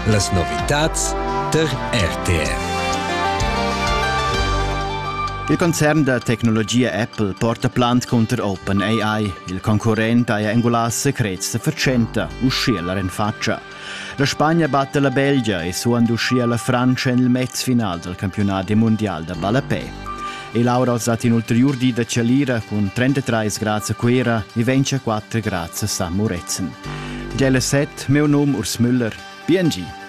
Las novitads der RTR. Il concern da tecnologia Apple porta plant cunter OpenAI. Il concurrent haja engulà secrets da fatschenta, uschia la renfatscha. La Spagna batta la Belgia e suand uschia la Frantscha en il mezfinal dal campiunadi mundial da ballapè. E l'aura ha dat in ulteriur di da chalira cun 33 grads a Cuera e 24 grads a San Murezzan. Gelle 7, meu num Urs Müller. BNG.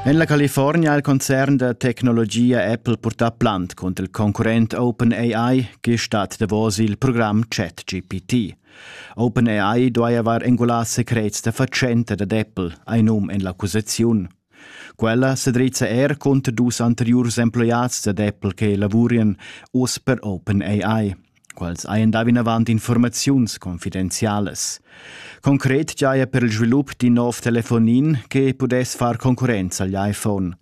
En la California ha il concern da tecnologia Apple purtà plant cunter il concurrent OpenAI, che stat davos il program ChatGPT. OpenAI duai avair engulà secrets da fatschenta dad Apple, ein num en l'accusaziun. Quella se drizza er conter dus anteriurs emploiads dad Apple che lavurian uss per OpenAI. Quals hajan dà vinavant informaziuns confidenzialas. Concret giaja per il svilup d'in nov telefonin che pudess far concurrenza agli iPhone.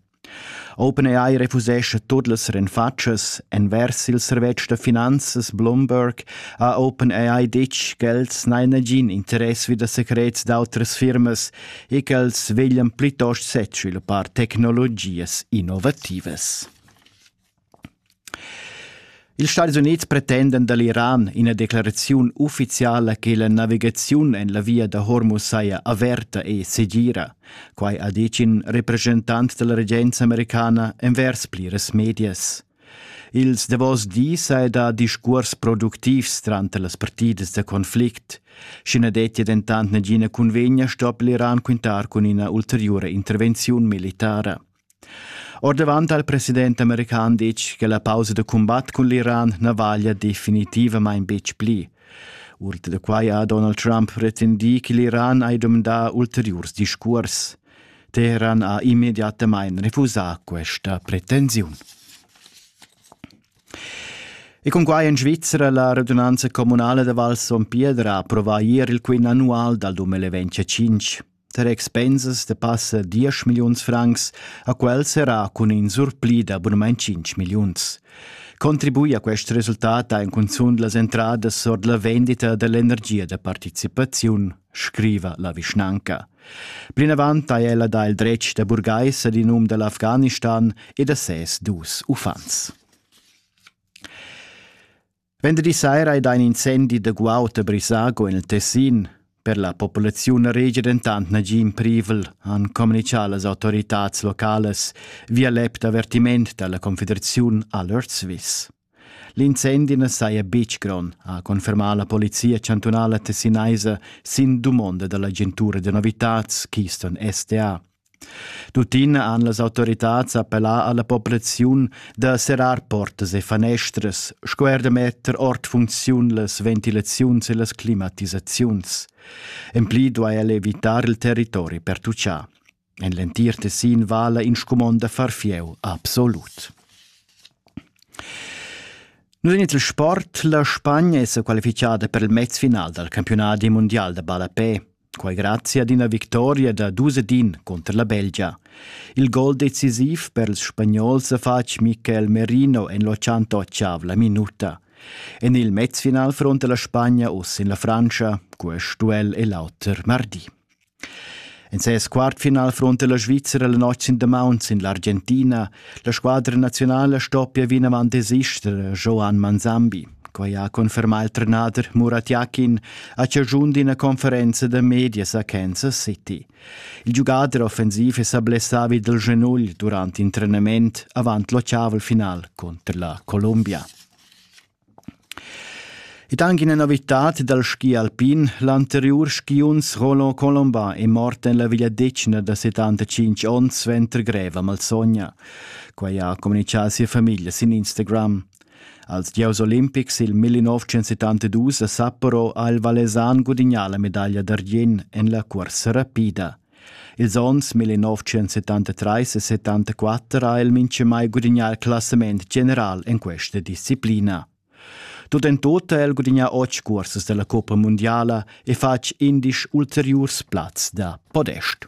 OpenAI refusescha tut las renfatschas. Envers il servetsch da finanzas Bloomberg ha OpenAI ditg ch'els n'han nagin interess vi da secrets d'autras firmas e ch'els veglian plitost sez sviluppar tecnologias innovativas. Ils Stadis Unids pretendan da l'Iran ina declaraziun uffiziala che la navigaziun en la via da Hormuz saja averta e segira. Quai ha ditg in represchentant da la regenza americana envers pliras medias. Ils davos dis è da discurs productivs tranter las partidas da conflict. Sch'i na dettia dentant nagina cunvegna sto l'Iran quintar cun ina ulteriura intervenziun militara. Ordavant ha il president american ditg che la pausa da cumbat cun l'Iran na vaglia definitivamain betg pli. Ord da quai ha Donald Trump pretendì che l'Iran ha dumandà ulteriurs discurs. Teheran ha immediatamain refusà questa pretensiun. E cunquai en Svizzera la radunanza comunala da Val Son Piedra approva ier il quint annual dal 2025. Tar expensas da passa diesch milliuns francs ha quel serrà cun in surpli da bunamain cinc milliuns. Contribui a quest resultat ha in cunzunt las entradas ord la vendita dell'energia da participaziun, scriva la vischnanca. Plinavant ha ella dà il dretg da burgais ad in um da l'Afghanistan e da ses dus uffants. Vendredi saira ei da in incendi da guaut a Brisago en il Tessin. Per la populaziun regia dentant nagin privel, han communicà las autoritads localas via l'app d'avertiment dalla Confederaziun Alert Swiss. L'incendi na saja betg grond, ha confermà la polizia chantunala tessinaisa sin dumonda dall'agentura da novitads Keystone SDA. Tuttina han las autoritads appellà alla populaziun da serrar portas e fanestras, sco er da metter ord funcziun las ventilaziuns e las climatisaziuns. En pli duai el evitar il territori per tucciar. En l'entir Tessin vala in scumond da far fieu absolut. Nus en il sport, la Spagna è qualificada per il mezfinal dal campionat mundial da ballapè. Quai grazia ad ina victoria da dus ed in cunter la Belgia. Il gol decisiv per ils spagnols ha fatg Michael Merino en l'88 la minuta. En il mezfinal fronta la Spagna uss sin la Frantscha, quest duell è l'auter mardi. En ses quartfinal fronta la Svizzera la notg sin damaun sin l'Argentina. La squadra nazionala stoppia vinavant desister Joan Manzambi. Quai ha confermà il trenader Murat Yakin a chaschun d'ina conferenza da medias a Kansas City. Il giugader offensiv è sa blessà vi dal genugl durant in trenament avant l'ottaval final cunter la Columbia. Ed anche una novità dal ski alpin, l'anterior skiunz Roland Colomba è morto nella vegliadetgna da 75 onns suenter greva malsogna. Quai ha comunicato sia famiglia sin Instagram. Als gieus olimpics il 1972 a Sapporo ha il Valesan gudignà la medaglia d'argient en la cursa rapida. Ils onns 1973 e 74 ha el mintgamai gudignà il classament general en questa disciplina. Tut en tut ha el gudignà otg cursas della Coppa Mondiala e fatg indisch ulteriurs plaz da podest.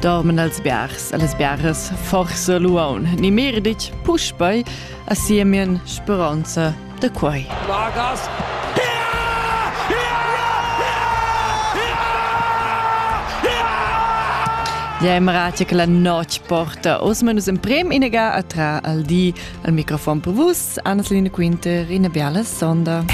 dorman als biars, a las biaras forse luaun, ni merditg puspei a siemien speronza da quei. Lagas! Ja im ratio che la noc porta os manus in prem inega atra al di al microfon per vus Annas Line Quinter in biala sonda.